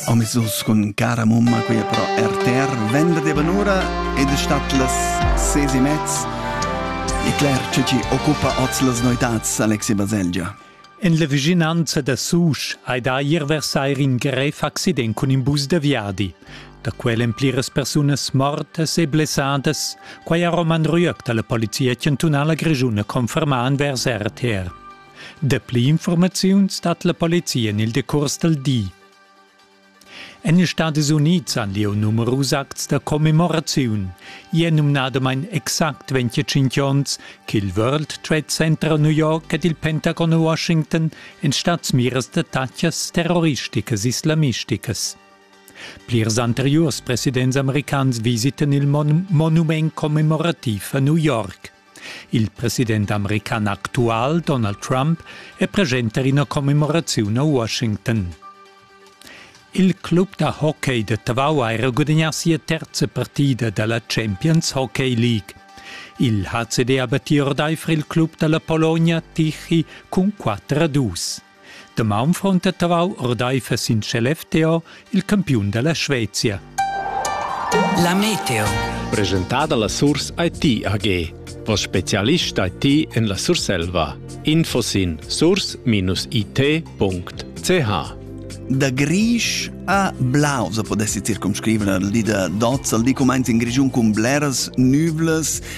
Omissus cun cara mumma qui però RTR venderdi vanura ed è stat las ses e mezz e Claire ce ci occupa oz las noetats Alexi Baselgia. En la vicinanza da Susch hai da ir versair in grev accident cun in bus da viadi. Da quel en pliras persunas mortas e blessadas, quai ha Roman Rüeg da la Polizia chantunala grischuna confermà envers RTR. Dapli informaziuns dat la polizia en il decurs dal di. En ils Stadis Unids han lieu numerus acts da commemoraziun. I è numnadamain exact 25 onns ch'il World Trade Center a New York ed il Pentagon a Washington en stadsmiras da tatschas terroristicas islamisticas. Plirs anteriurs presidents americans visitan il mon monument commemorativ a New York. Il president american actual Donald Trump è presenta ina commemoraziun a Washington. Il club da hockey de Tavau ha era gudagnà sia terza partida da la Champions Hockey League. Il HCD ha battì ordaifer il club da la Polonia Tichy cun 4 a 2. Damaun fronta Tavau ordaifer sin Skellefteå il campiun dalla Svezia. La Meteo. Presentada la Surs IT AG. Vos specialist IT en la Surselva. Info sin surs-it.ch Da grisch a blau se podessi circumscrivere, di da dozza, di comments in grigiun cun bleras nüvlas